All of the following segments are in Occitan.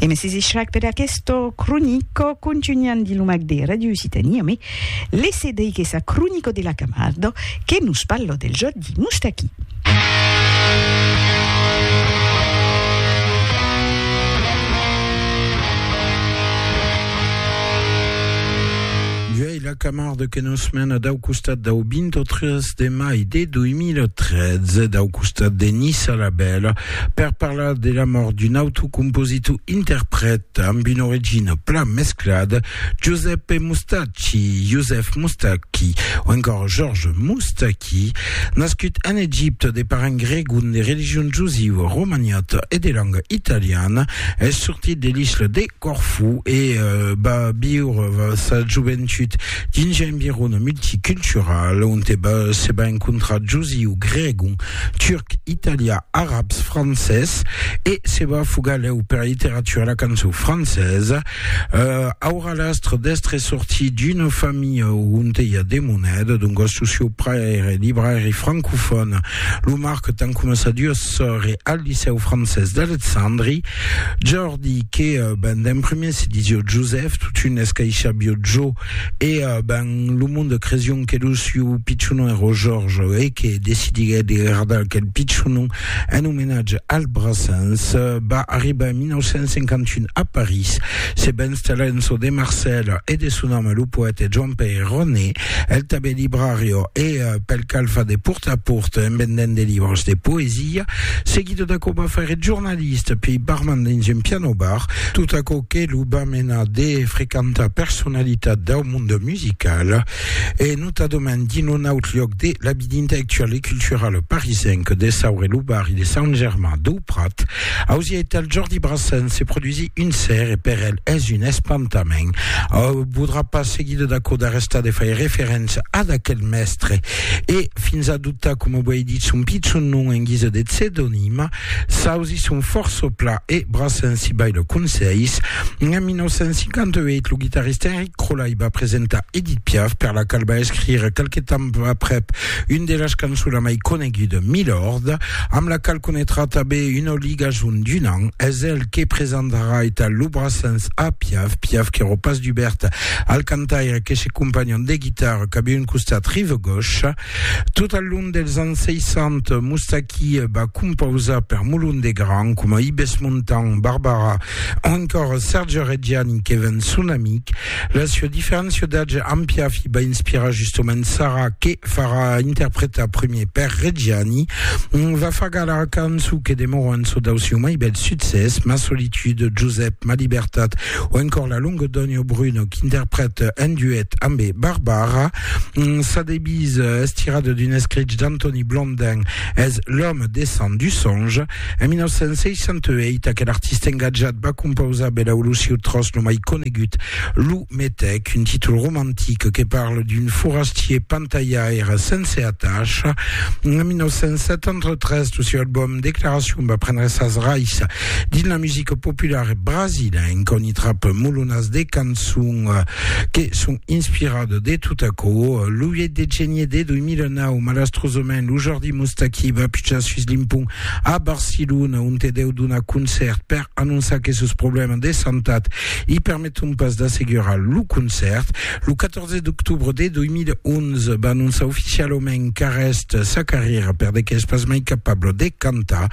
E me sesi shrag per aquesto cronico contugnant di lo mag de Radio Occitania, me lesse deich essa cronico de la Camardo que nos parlo del jòc di Moustaqui. Uèi la Camardo que nos mena dau costat dau 23 de mai de 2013, dau costat de Nissa la Bèla, Per parlar de la mòrt d'un autre compositor interprèt amb una origina plan mesclada, Giuseppe Mustacchi, Joseph Moustaki, o encore Georges Moustaki, nascut en Egipte de parents gregon de religion jusiva, romaniata e de langa italiana, es sortit de l'isla de. Corfú e va viure sa joventut dins un environ multicultural onte se va encontrar josiu, gregon, turc, italià, arabs, francés e se va fugar lèu pera literatura e la cançon francesa. Aurà l'astre d'èstre sortit d'una familha onte i a de moneda, doncas lo sieu paire èra librairi francofòn, lo marque tant coma sa duas sòrre al licèu francés d'Alexandri. Di que ben d'en prumèr se disió Josèf, totun escaishabió Jo, e ben lo monde cresión que lo siu pichonon èró Jòrge, e que decidiguèt de gardar aquel pichonon en omenatge al Brassens. Va arribar en 1951 a París, se va installar en çò de Marcèl e de son ame lo poète Joan-Pèir Roné, el tanben librarió, e pel cal fa de pòrta a pòrta en vendent de libres de poesia. Seguidó d'aquò va faire jornalièr. Liste pei barman dins un piano bar, tot aquò que lo va menar de frequentar personalitat dau monde musical e notadament dins lo naut liòc de la vida intellectuala e culturala parisenca de Sauré lo barri de Sant Germain dau Prat. Ausièt el Jordi Brassens se produsí un ser e per el es un espantament. Au podrà pas seguida d'aquò d'arrestar de fai referéncia ad aquel mèstre e fins adoptar coma uèi dit son pichon nom en guisa de pseudonima, S'ausi son fòrça pla e braçan si bai le conselhs. En 1958, lo guitarrista Enric Crolai va presentar Edith Piaf, per la qual va escrire qualque temps aprèp un de las cançons la mai coneguda, Milord, amb la qual conetrà tanben una ligason d'un an. Es el que presentarà eta lo braçans a Piaf, Piaf qu'èra pas dubèrt al cantaire que se companhon de guitarra cap un costat rive-gosh. Tot al long dels ans 60, Moustaki va compausar per Molon de Gran, coma Ibes Montan, Barbara o encòra Serge Reggiani que ven son amic. La sua diferéncia d'atge amb Piafi va inspirar justomènt Sara que farà interpretar primier per Reggiani. Va far galar cançon que demòra un çò dau sieu mai bèl succès, Ma solitude, Josep, Ma libertat o encòr La longa dònha o Bruno qu'interprète en duet ambe Barbara. Sa devise es tirada d'un escrich d'Antoni Blondin, es L'homme descend du songe. En 1968, aquel artista engatjat va compausar Belau lo sieu tròç lo mai conegut, Lo Metèc, un títol romantic que parla d'un forastier pantalhaire sense atacha. En 1973, lo sieu album Declaracion va prendre sas rais dins la musica populara brasilenca, on i trap molonas de cançons que son Inspirat de tot aquò, lo 8 de genier de 2009, malastrosament, lo Jordi Moustaki va pujar sus l'impont a Barcelona, onte deu donar concèrt per anonçar que sos problèmas de santat i permeton pas d'assegurar lo concèrt. Lo 14 d'octobre de 2011, va anonçar oficialament qu'arrèst sa carrièra per de qu'es pas mai capable de cantar.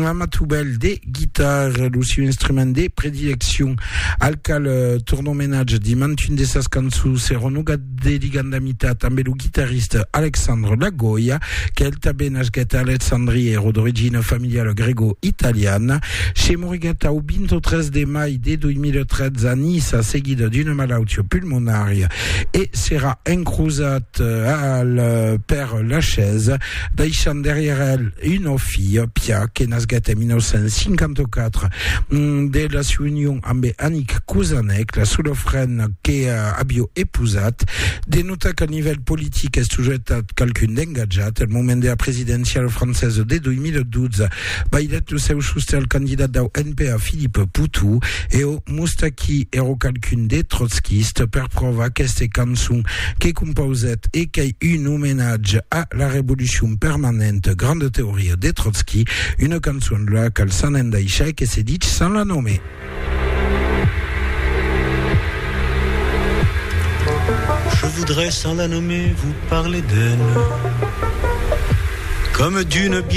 Amatubèl de guitarra, lo sieu instrument de predileccion, al qual torna omenatge dins mantun de sas cançons, seronogat de Ligandamita, tanben lo guitarrista Alexandre Lagoya, quel tanben nasquèt a Alexandria, èra d'origina familiala grego-italiana, se moriguèt au 23 de mai de 2013 a Niça seguida d'una malautia pulmonària e serà encrosat al Père Lachaise. deishant darrièr el una filha, Pia, que nasguèt en 1954 de la siua union ambe Annick Kouzanec, la sola frena que avió epousat. De notar qu'al nivèl politic es sujetat qualqu'un d'engatjat. Al moment dera presidenciala francesa de 2012, bailhèt lo seu sostè al candidat dau NPA, Philippe Poutou. E o Moustaki ero qualqu'un de trotskist, per pròva aqueste cançon que compausèt e qu'ei un omenatge a la revolucion permanente, grande teoria de Trotski, una cançon de la qual s'an endaisha e que se dich sans la nommer. Je voudrais sans la nommer vous parler d'elle comme d'une